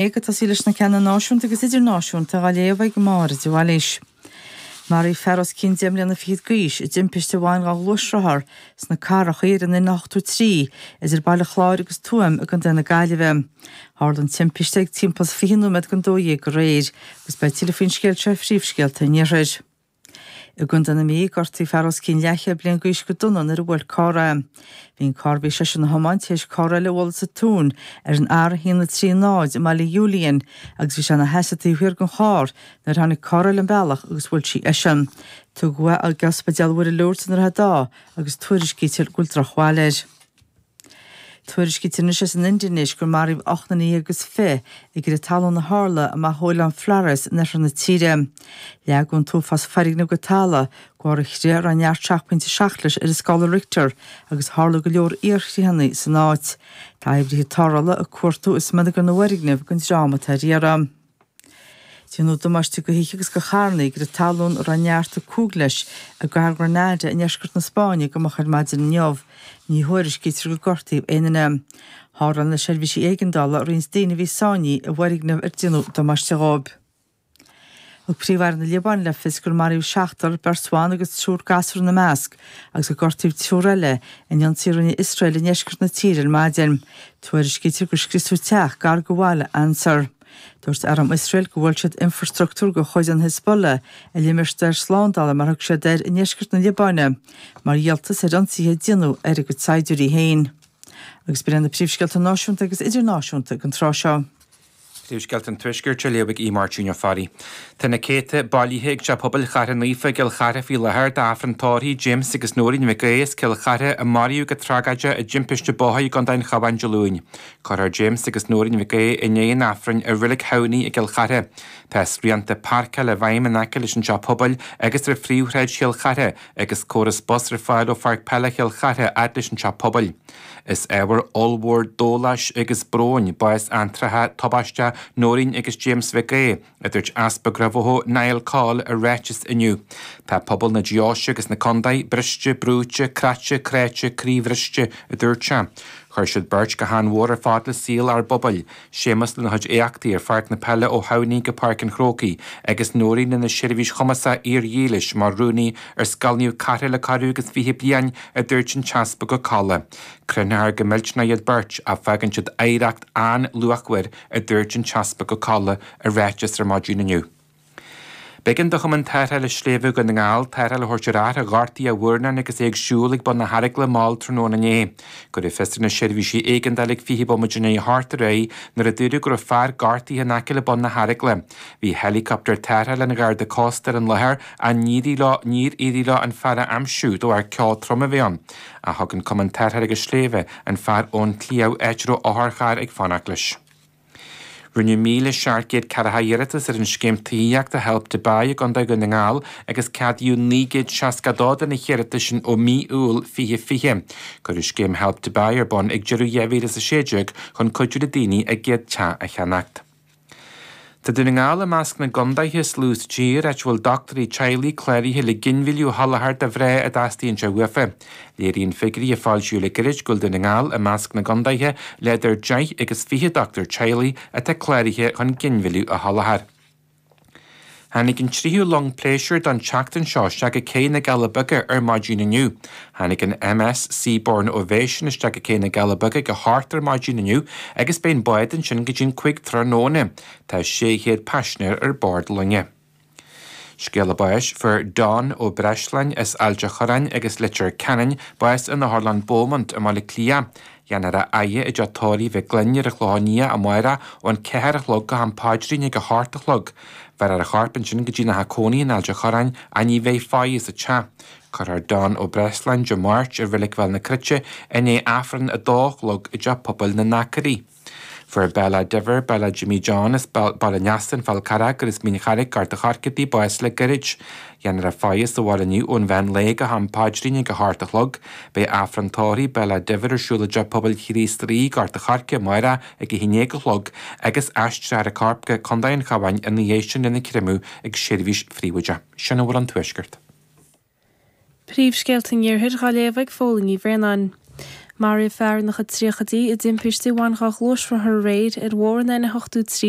é ag tosaí leis na ceanna náisiúnta agus idirnáisiúnta á léamh ag Máire de Bhailís. Maraíodh fear os cionn deich mbliana fichead d'aois i dtimpiste a bhain dhá ghluaisrothar sna Cathracha ar an N83 idir Baile Chláir agus Tuaim i gContae na Gaillimhe. Tharla an timpiste ag timpeall is fiche nóiméad don dó dhéag aréir, agus beidh tuilleadh faoin scéal seo i phríomhscéalta an Iarthair. I gContae na Mí, gortaíodh fear os cionn leathchéad bliain d'aois go dona nuair a bhuail carr é. Bhí an carr a bhí seisean a thiomáint tar éis carr eile a bhualadh sa tóin ar an R130 i mBaile Iúiliáin agus bhí sé ina sheasamh taobh thiar den charr nuair a tháinig carr eile an bealach agus bhuail sí eisean. Tugadh é go Ospidéal Mhuire Lourdes i nDroichead Átha agus tuairiscítear go bhfuil drochbhail air. Tuairiscítear anois as an Indinéis gur maraíodh ocht nduine dhéag is fiche i gcrith talún a tharla amach ó Oileán Flores in oirthear na tíre. Leagadh an t-uafás foirgneamh go talamh de bharr an chrith a raibh neart seacht bpointe seacht leis ar an scála Richter, agus tharla go leor iarchritheanna san áit. Tá oibrithe tarrthála ag cuartú i smionagar na bhfoirgneamh don dream atá ar iarraidh. Déanadh damáiste do thithe agus do charrannaí i gcrith talún a raibh neart a cúig leis i gcathair Granada i ndeisceart na Spáinne go moch ar maidin inniu. Ní thuairiscítear gur gortaíodh aon duine. Tharrtháil na seirbhísí éigeandála roinnt daoine a bhí sáinnithe i bhfoirgneamh ar déanadh damáiste dhóibh. Thug Príomh-Aire na Liobáine le fios gur maraíodh seachtar, beirt bhan agus triúr gasúr ina measc, agus gur gortaíodh triúr eile in ionsaí a rinne Iosrael i ndeisceart na tíre ar maidin. Tuairiscítear gur scriosadh teach gar do bhaile Ansar. Dúirt arm Iosrael gur bhuail siad infreastruchtúr de chuid an Hezbollah i limistéar slándála, mar a thug siad air, i ndeisceart na Liobáine mar dhíoltas ar ionsaithe a déanadh ar a gcuid saighdiúirí féin. Agus b'in iad na príomhscéalta náisiúnta agus idirnáisiúnta ag an tráth seo. Nuachtscéalta an Tuaiscirt á léamh ag Aodh Máirtín Ó Fearraigh. Tá na céadta bailithe ag Teach Pobail Chartha Naofa i gCill Chartha faoi láthair d'Aifreann Tórraimh James agus Nóirín Mhic Aodha as Cill Chartha a maraíodh go tragóideach i dtimpiste bóthair i gContae an Chabháin Dé Luain. Cuirfear James agus Nóirín Mhic Aodha i ndiaidh an Aifrinn i Reilig Thamhnaigh i gCill Chartha. Tá srianta páirceála i bhfeidhm in aice leis an Teach Pobail agus ar phríomhshráid Chill Chartha agus córas bus ar fáil ó Pháirc Peile Chill Chartha fhad leis an Teach Pobail. Is ábhar ollmhór dóláis agus bróin bás antráthach, tubaisteach Nóirín agus James Mhic Aoidh, a dúirt Easpag Ráth Bhoth, Niall Coll, i ráiteas inniu. Tá pobal na deoise agus na contae briste, brúite, creachta, cráite, croíbhriste, a dúirt sé. Chuir siad beirt go han-mhór ar fad le saol ár bpobail. Séamus lena chuid éachtaí ar pháirc na peile ó Thamhnaigh go Páirc an Chrócaigh agus Nóirín lena seirbhís chumasach fhíordhílis mar rúnaí ar Scoil Naomh Cartha le corradh agus fiche bliain a dúirt an tEaspag Ó Colla. Cronófar go millteanach iad beirt ach fágann siad oidhreacht an-luachmhar a dúirt an tEaspag Ó Colla i ráiteas ar maidin inniu. B'éigean do Chumann Tarrthála Sléibhe Dhún na nGall tarrtháil a thabhairt ar fhear a ghortaigh a mhurnán agus é ag siúl ag bun na hEaragaile mall tráthnóna inné. Cuireadh fios ar na seirbhísí éigeandála ag 20 bomaite i ndiaidh a hocht aréir nuair a dúradh go raibh fear gortaithe in aice le bun na hEaragaile. Bhí helicopter tarrthála an Gharda Cósta ar an láthair ach níor éirigh leo an fear a aimsiú de bharr ceo trom a bheith ann. Ach thug an Cumann Tarrthála Sléibhe an fear ón tsliabh, áit a raibh otharcharr ag fanacht leis. Rinneadh 1,740 iarratas ar an Scéim Tithíochta Help to Buy i gContae Dhún na nGall agus ceadaíodh 962 de na hiarratais sin ó mhí Iúil 2020. Cuireadh Scéim Help to Buy ar bun ag deireadh 2016 chun cuidiú le daoine a gcéad teach a cheannacht. Tá Dún na nGall i measc na gcontaetha is lú sa tír áit a bhfuil dochtúirí teaghlaigh cláraithe le ginmhilleadh a sholáthar do mhná a dteastaíonn sé uafa. Léiríonn figiúirí a foilsíodh le gairid go bhfuil Dún na nGall i measc na gcontaetha le idir deich agus fiche dochtúir teaghlaigh atá cláraithe chun ginmhilleadh a sholáthar. Tháinig an tríú long pléisiúir don tseachtain seo isteach i gCé na gCealla Beaga ar maidin inniu. Tháinig an MS Seabourn Ovation isteach i gCé na gCealla Beaga ag a hocht ar maidin inniu agus beidh an bád ansin go dtí'n cúig tráthnóna. Tá sé chéad paisinéir ar bord loinge. Scéala báis fuair Don Ó Breisleáin as Ailt an Chorráin agus Leitir Ceanainn, bás in Otharlann Beaumont i mBaile Átha Cliath, dhéanfar a fhaire i dteach Tórraimh Mhic Fhloinn ar an Chlochán Liath amáireach ón ceathair a chlog go ham paidrín ag a hocht a chlog. Bhéarfar a chorp ansin go dtí na theach cónaí in Ailt an Chorráin ach ní bheidh faire sa teach. Cuirfear Don Ó Breisleáin Dé Máirt i Reilig Bhéal na Cruite i ndiaidh Aifreann a dó a chlog i dteach pobail na nAcraí. Fuair Billy Diver, Billy Jimmy John as Baile an Easa, An Fál Carrach agus Mín Charraigh Gort an Choirce bás le gairid. Dhéanfar a fhaire sa bhaile inniu ón mheán lae go ham paidrín ag a hocht a chlog. Beidh Aifreann Tórraimh Billy Diver ar siúl i dTeach Pobail Chríost Rí Gort an Choirce amáireach ag a haon déag a chlog agus aistreofar a chorp go Co. an Chabháin ina dhiaidh sin lena chréamadh ag seirbhís phríobháideach. Sin a bhfuil ón Tuaisceart. Príomhscéalta an Iarthair dhá léamh ag Phóilín Ní Bhraonáin. Maraíodh fear ina chuid tríochaidí i dtimpiste a bhain dhá ghluaisrothar aréir ar Bhóthar an N83